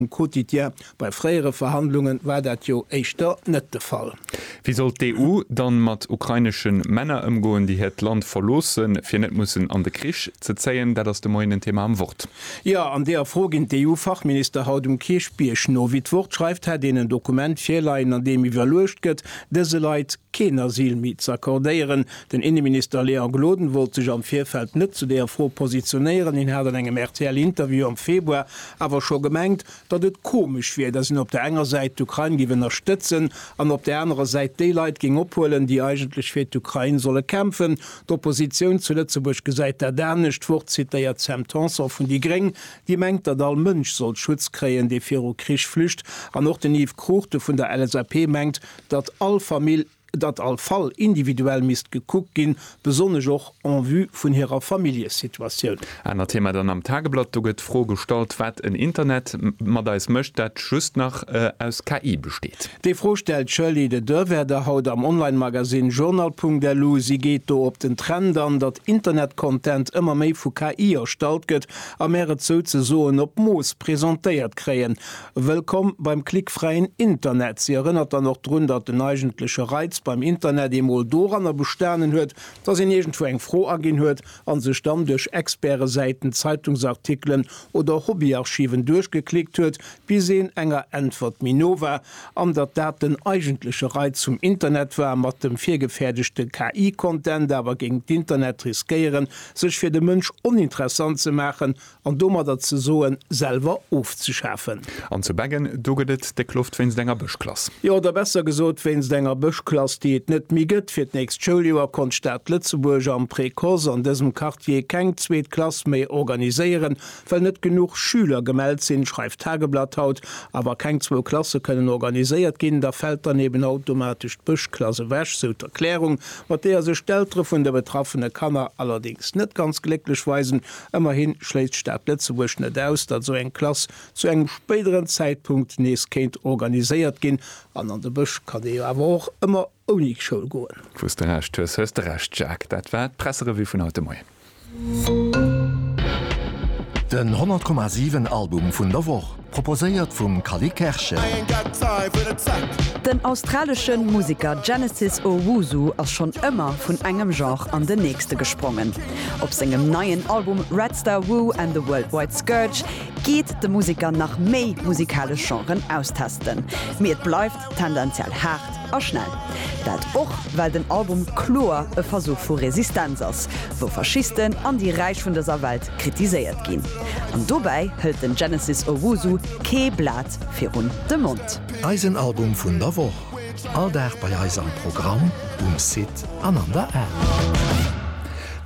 Um Quotidien, bei fréiere Verhandlungen war dat jo éischter net de Fall. Wéi soll d'EU dann mat ukrainesche Männer ëmgoen, déi hiert Land verloossen, fir net mussen an de Krich ze zéien? Dat ass de Moien den Thema am Wort. Jo, an deeër Fro ginn d'EU-Fachminister haut um Kierchbierg no. Wéi d'Wort schreift, hätt een en Dokument virleien, an deem iwwerluecht gëtt, dëse Leit, keen Asyl méi ze accordéieren. Den Inneminister Léon Gloden wollt sech am Virfeld net zu deeër Fro positionéieren. Hien hat an engem RTL-Interview am Februar awer scho gemengt, datt et komesch wier, datt een op der enger Säit d'Ukrain géif ënnerstëtzen an op der anerer Säit déi Leit géing ophuelen, déi eigentlech fir d'Ukrain solle kämpfen. D'Oppositioun zu Lëtzebuerg gesäit dat anescht. Wort zitéiert d'Sam Tanson vun déi gréng, déi mengt, datt all Mënsch sollt Schutz kréien, dee viru Krich flücht. An och den Yves Cruchten vun der LSAP mengt, datt all Famill, datt all Fall individuell misst gekuckt ginn, besonnesch och en vue vun hirer Familljesituatioun. Anert Thema dann am Tageblatt, do gëtt d'Fro gestallt, wat en Internet mat eis mécht, dat just nach aus KI besteet. Déi Fro stellt d'Shirley de Derwerder haut am Online-Magasinn Journal.lu. Si geet do op den Trend an, datt Internet-Content ëmmer méi vu KI erstallt gëtt a mär et souzesoen op Mooss presentéiert kréien. Wëllkomm beim klickfräien Internet! Si erënnert dann och drun, datt den eigentleche Reiz beim Internet eemol doranner bestanen huet, datt een iergendwou eng Fro aginn huet a sech dann duerch Expertesäiten, Zeitungsartikelen oder Hobbyarchiven duerchgeklickt huet, bis een enger Äntwert méi no war, an datt dat den eigentleche Reiz vum Internet war, mat dem virgefäerdegte KI-Content awer géing d'Internet riskéieren, sech fir de Mënsch oninteressant ze maachen. An domadder ze soen, selwer ofzeschafen. An zu Beggen, do gëtt et déck Loft wéinst enger Bëschklass. Jo, oder besser gesot, wéinst enger Bëschklass, déi et net méi gëtt. Fir d'nächst Schouljoer konnt d'Stad Lëtzebuerg am Précoce an dësem Quartier keng zweet Klass méi organiséieren, well net genuch Schüler gemellt sinn, schreift d'Tageblatt haut. A wa keng zwou Klasse kënnen organiséiert ginn, da fält dann eben automatesch d'Bëschklass ewech, sou d'Erklärung, mat deeër sech d'Eltere vun de betraffene Kanner allerdéngs net ganz glécklech weisen. Ëmmerhi schléisst d'Stad Lëtzebuerg net aus, datt esou eng Klass zu engem spéideren Zäitpunkt nees kéint organiséiert ginn. An an de Bësch kann ee jo awer och ëmmer ouni Schoul goen. Wous de Recht hues, hues de Recht, Jacques. Dat war d'Presserevue vun haut de Moien. Den 100,7 Album vun der Woch. Proposéiert vum Cally Kerschen. Den australesche Museker Genesis Owusu ass schonn ëmmer vun engem Genre an den nächste gesprongen. Op sengem neien Album Red Star Woo and the Worldwide Scourge geet de Museker nach méi musikalesch Genren austesten. Mee et bleift tendenziell haart a schnell. Dat och well den Album kloer e Versuch vu Resistenz ass, wou Faschisten an déi Räich vun dëser Welt kritiséiert ginn. An dobäi hëlt den Genesis Owusu kee Blat virun de Mond. Eisen Album vun der Woch, all Dag bei eis am Programm, um Site an an der App.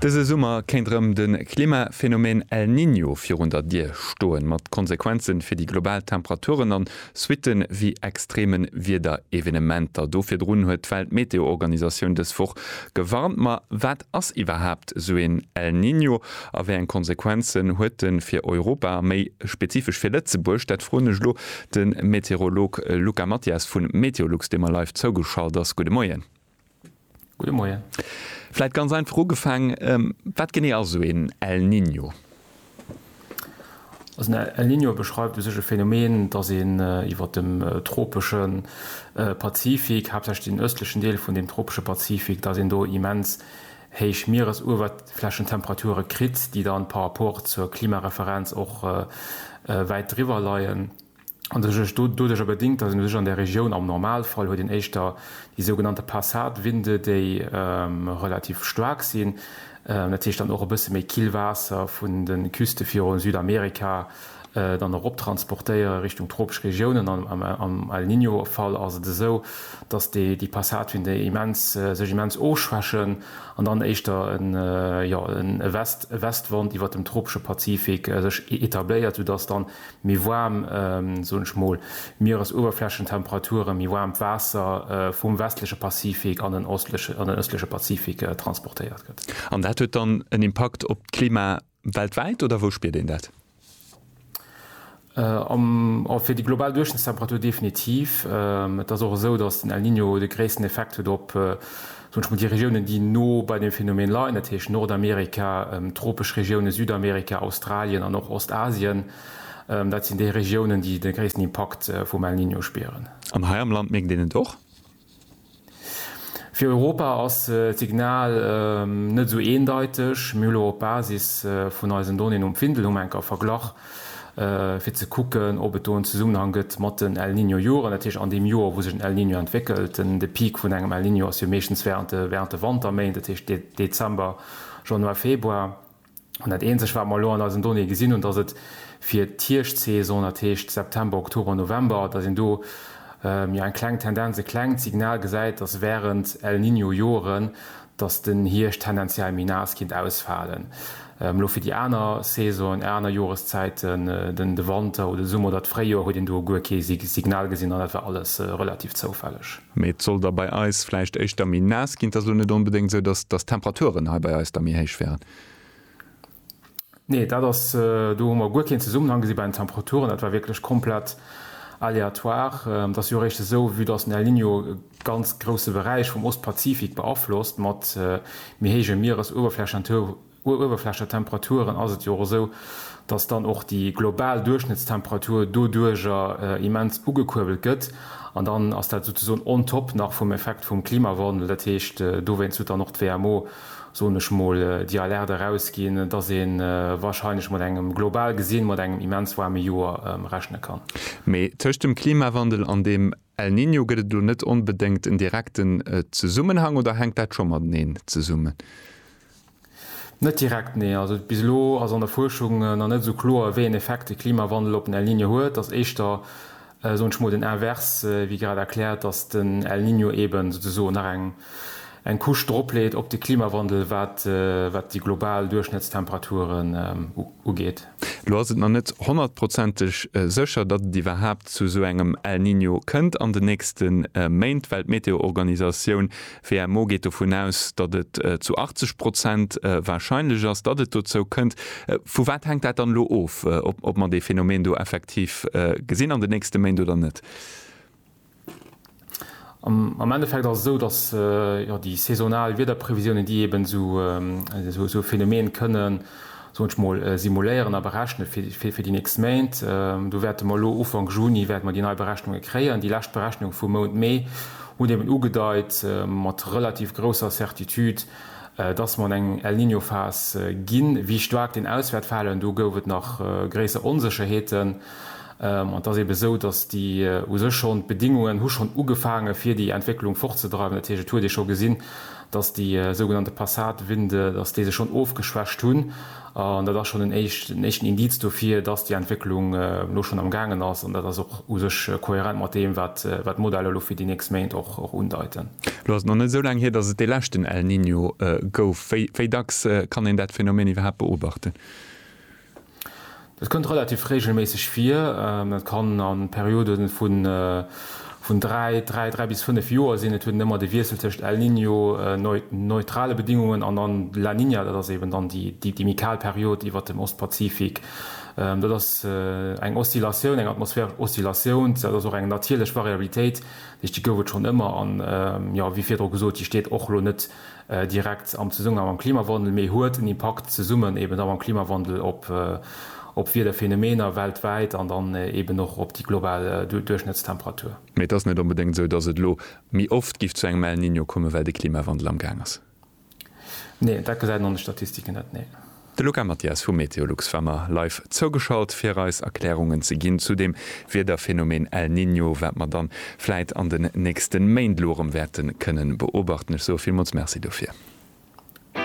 Dëse Summer kéint rëm de Klimaphenomen El Niño virun der Dier stoen, mat Konsequenze fir déi global Temperaturen an Suitte wéi extreme Wiederevenementer. Do virdrun huet d'Weltmeteoorganisatioun dës Woch gewarnt. Ma wat ass iwwerhaapt esou een El Niño a wéi eng Konsequenzen huet en fir Europa a méi spezifesch fir Lëtzebuerg? Dat froen ech elo de Meteorolog Luca Mathias vun Meteolux, dee mer live zougeschalt ass. Gudde Moien. Gudde Moien. Vläit ganz einfach ugefaang, Wat genee ass esou een El Niño? Also en El Niño beschreift u sech e Phänomen, datt een iwwer dem tropesche Pazifik, haaptsächlech den ëstlechen Deel vun deem tropesche Pazifik, datt een do immens héich Mieresuewerflächentemperature kritt, déi dann par rapport zur Klimareferenz och wäit driwwer leien. an sech erg doduercher bedingt, datt een u sech an där Regioun, am Normalfall huet een éischter déi sougenannte Passatwinde, déi relativ staark sinn, dat heescht dann och e bësse méi kill Waasser vun de Küste virun Südamerika dann erop transportéiere Richtung tropesch Regiounen. An am El Niño-Fall ass et esou, datt déi Passatwinde immens sech immens ofschwächen an dann éischter en, jo, e West, e Westwand iwwert dem tropesche Pazifik sech etabléiert, soudatt dann méi waarm, soen ech mol, Mieresuewerflächentemperaturen, méi waarmt Waasser vum westleche Pazifik an den ëstleche Pazifik transportéiert gëtt. An dat huet dann en Impakt op d'Klima weltwäit, oder wou spiert een dat? Fir déi global Duerchschnëttstemperatur definitiv. Et ass och esou, datt den El Niño de gréissten Effekt huet op. Wënsche mer déi Regiounen, déi no bei deem Phänomen leien, dat heescht Nordamerika, tropesch Regiounen, Südamerika, Australien an och Ostasien, dat sinn déi Regiounen, déi de gréissten Impakt vum El Niño spieren. An hei am Land mierkt een et och. Fir Europa ass d'Signal net esou eendeiteg. Mir hu lo op Basis vun eisen Donnéeën um Findel hu mer eng Kéier verglach, fir ze kucken, ob et do en Zesummenhang gëtt mat den El Niño Joren, dat heescht an deem Joer, wou sech en El Niño entwéckelt. De Peak vun engem El Niño ass jo meeschtens wärend de wärend de Wanterméint, dat heescht Dezember, Januar, Februar. An dat eenzegt, wat mer elo an eisen Donnéeë gesinn hunn, dass et fir d'Hierschtsaison, dat heescht September, Oktober, November, dass een do jo eng kleng Tendenz, e klengt Signal gesäit, dass wärend El Niño Joren, dass den Hierscht tendenziell méi naass kinnt ausfalen, elo fir déi aner Saisonen, aner Joreszäiten, den de Wanter oder de Summer oder d'Fréijoer, huet een do guer kee Signal gesinn an dat war alles relativ zoufälleg. Mee et soll da bei eis vläicht éischter méi naass ginn. Et ass elo net onbedéngt esou, dass d'Temperaturen hei bei eis da méi héich wären. Nee, dat ass, do hu mer guer keen Zesummenhang gesi bei den Temperaturen. Dat war wierklech komplett aléatoire. Et ass jo eréischt esou, vue dass den El Niño e ganz grousse Beräich vum Ostpazifik beaflosst, mat méi héije Mieresuewerflächentemperaturen, ass et jo och esou, dass dann och déi global Duerchschnëttstemperatur doduerjer immens ugekuerbelt gëtt. An dann ass dat souzesoen on top nach vum Effekt vum Klimawandel. Dat heescht, dowéinst huet dann och d'WMO soen ech mol, déi Alerte erausginn, dass ee warscheinlech mat engem, global gesinn, mat engem immens waarme Joer rechne kann. Mee tëscht dem Klimawandel an dem El Niño gëtt et elo net onbedéngt en direkten Zesummenhang, oder hänkt dat scho mateneen zesummen? Net direkt, nee. Also bis elo ass an der Fuerschung nach net esou kloer, wéi een Effekt de Klimawandel op den El Niño huet. Ass éischter soen ech mol den Invers, wéi grad erkläert, dass den El Niño eben souzesoen nach eng eng Couche dropleet op de Klimawandel, wat wat déi global Duerchschnëttstemperaturen ugeet. Elo ass et nach net honnertprozenteg sécher, datt et iwwerhaapt zu esou engem El Niño kënnt an den nächste Méint, well d'Meteoorganisatioun D'WMO geet dovun aus, datt et zu 80 Prozent warscheinlech ass, datt et dozou kënnt. Vu wat hänkt dat dann elo of, ob mer dee Phänomen do effektiv gesinn an den nächste Méint oder net? Am Endeffekt ass et esou, datt déi saisonal Wiederprevisiounen, déi eeben esou e Phänomen kënnen, soen ech mol, simuléieren a berechne fir fir déi nächst Méint. Do wäerte mer elo Ufank Juni wäerte mer déi nei Berechnunge kréien. Déi lescht Berechnunge vum Mount Mee hunn eben ugedeit mat relativ grousser Certitude, dass mer an eng El-Niño-Phas ginn. Wéi staark deen aus wäert falen, do gouf et nach gréisser Onsécherheeten. An et ass ebe esou, dass déi u sech schonn, d'Bedingungen hu schonn ugefaange fir déi Entwécklung fortzedreiwen. Dat heescht, et huet ee scho gesinn, dass déi sougenannte Passatwinde, dass déi sech schonn ofgeschwächt hunn, an dat ass schonn en éischten Indiz dofir, dass déi Entwécklung elo schonn am gaangen ass, an dat ass och u sech kohärent mat deem, wat d'Modeller elo fir déi nächst Méint och undeiten. Elo ass et nach net esou laang hier, dass et dee leschten El Niño gouf. Wéi dacks kann een dat Phänomen iwwerhaapt beobachten? Dat kënnt relativ reegelméisseg vir. Dat kann a Periode vun dräi, dräi, dräi bis fënnef Joer sinn. Et huet een ëmmer de Wiessel tëscht El Niño, neutrale Bedingungen, an dann La Niña, dat ass eben dann déi méi kal Period iwwert dem Ostpazifik. Dat ass eng Oszillatioun, eng atmosphäresch Oszillatioun. Dat ass och eng natierlech Variabilitéit, dat heescht déi gouf et schonn ëmmer. An, jo, wéi virdru gesot, déi steet och elo net direkt am Zesummenhang mam Klimawandel, mee huet en Impakt zesummen eben da mam Klimawandel op Wiederphänomener weltwäit an dann eben och op déi global Duerchschnëttstemperatur. Mee et ass net onbedéngt esou, datt et elo méi oft géif zu engem El Niño kommen, well de Klimawandel am Gaang ass. Neen, dat gesäit een an de Statistiken net, nee. De Luca Mathias vu Meteolux war mer live zougeschalt fir eis Erklärungen ze ginn zu dem Wiederphänomen El Niño, wat mer dann vläit an den nächsten Méint elo erëm wäerten kënnen beobachten. Ech soe villmools Merci dofir.